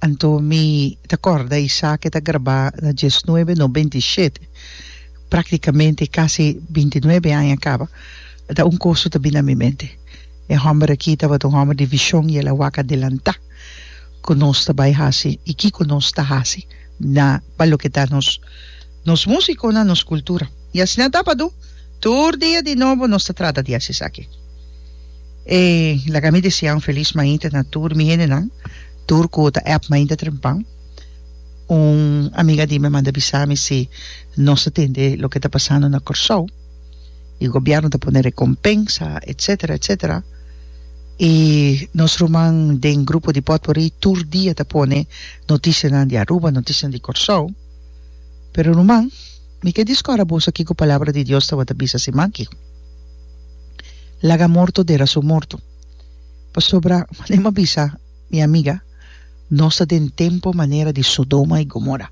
Anto mi ta kòrda esaki ta grabá na diesnuebe no beintishet, práktikamente kasi beintinuebe aña kaba, ta un kos su ta bini na mi mente. E hòmber akí tabata un hòmber di vishon i el a wak adelantá ku nos ta bai hasi i kiko nos ta hasi na pa loke ta nos nos músikonan, nos kultura. I asina tabata tur dia di nobo nos ta trata di hasi esaki. E laga mi desea un felis mainta na tur mi hendenan, tur ku ta app mainta trempan. Un amiga di mi a manda bisa mi si nos ta tende loke ta pasando na Kòrsou i gobièrnu ta pone rekompensa etsetera etsetera i nos ruman den grupo di pòtpurri tur dia ta pone notisianan di Aruba notisianan di Kòrsou pero ruman mi ke diskora boso ki ku palabra di Dios tabata bisa si manki. Laga morto dera su morto. Pasobra, mane m'ha bisa, mi amiga, nos ta den tempu manera di Sodoma i Gomora.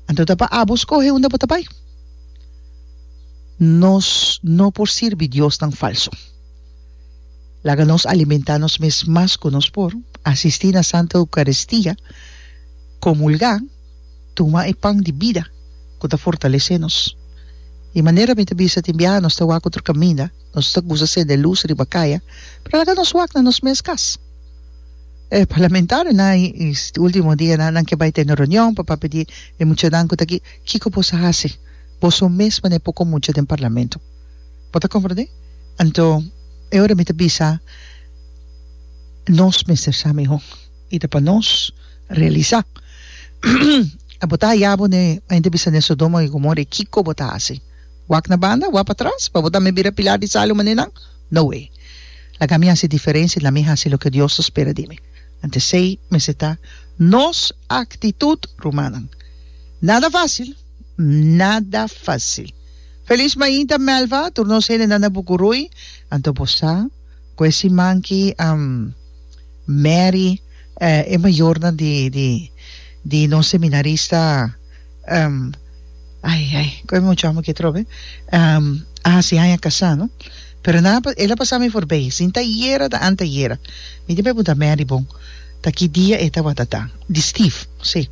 Anto ta pa abo skohe unda bo ta bai. Nos no por sirbi diosnan falsu. Laga nos alimentá nos mes mas ku nos por, asistí na Santa Eukaristia, komulgá, Tuma e pan di bida ku ta fortalesé nos. Di manera mi ta bisa tin biaha nos ta wak otro kaminda, nos ta kusa sende lus riba kaya, pero laga nos wak na nos mes kas. E parlamentariu nan i e ultimo dianan nan ke bai tene reunion pa papia di e muchanan ku ta aki, kiko bos a hasi? Boso mes pone poko mucha den parlamento. Bo ta komprendé? Anto e ora mi ta bisa nos mester sa mihó. y ta pa nos realisa. Abo bo ta haya bo ne hende bisa ne Sodoma y Gomora y kico bo ta haci? Wak na banda, wak patras, pa bo tambe bira pilar di sal y manenan? No way! Laga mi haci diferencia y lami haci loke Dios ta spera di mi. Anto esey mester ta nos actitud, rumannan. Nada facil, nada facil. Feliz mainta Melva, tur nos hendenan na Bucuruy. Anto bo sa cu e siman ki. Mary, E mayornan di di di nos seminarista, um, ay, ay, con e muchacho amo ki atrobe, um, a haci haña casá, no? Pero nan a, el a pasá mi forbey, sin ta ayera, ta antayera. Mi tin pregunta Mary, Bon, ta ki dia e tabata ta? Di Steve, sí.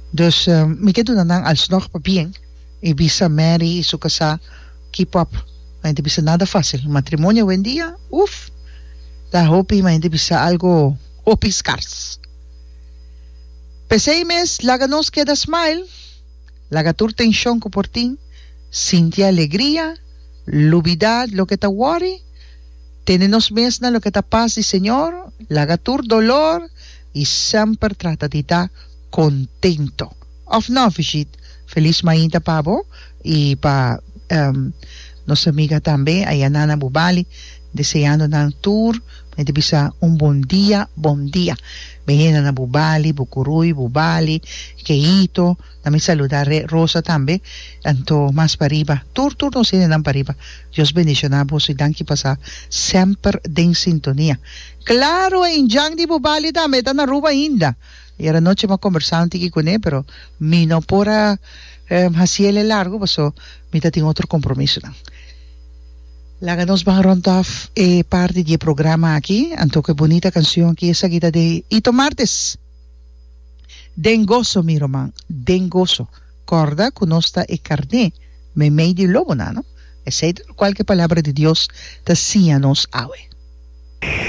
Dus, mi ke duna nan alsnog pa bien y bisa Mary y su casá. Keep up. Ma hende bisa nada facil. Matrimonio awendia, uf, ta hopi, ma hende bisa algo hopi scars. P'esey mes, laga nos keda smile, laga tur tension cu por tin, sinti alegria, lubida loke ta worry, tene nos mes na loke ta paz di Señor, laga tur dolor y semper trata di ta contento. Of no, Fishit. Feliz mainta pa bo y pa nos amiga tambe ayana na Bubali, deseando nan tur me ta bisa un bon dia, bon dia. Mi henda na Bubali, Bucuruy, Bubali, Keito, na mi saluda Re Rosa tambe, anto mas pariba tur tur nos hendenan pariba. Dios bendiciona boso y danki pa sa semper den sintonia. Claro, Injan di Bubali tambe ta na Aruba ainda. I era nochi bo a kombersá un tiki kuné, pero mi no por a hasi el e largu paso mi ta tin otro kompromisonan. Laga nos baha ròntòf e parti di e programa aki. Anto ku e bunita kanshon aki, esaki ta den Hito Martes. Den goso mi ruman, den goso. Kòrda ku nos ta e karné meimei di lobonan, no? Esei ta lokual ku e Palabra di Dios ta siña nos awe.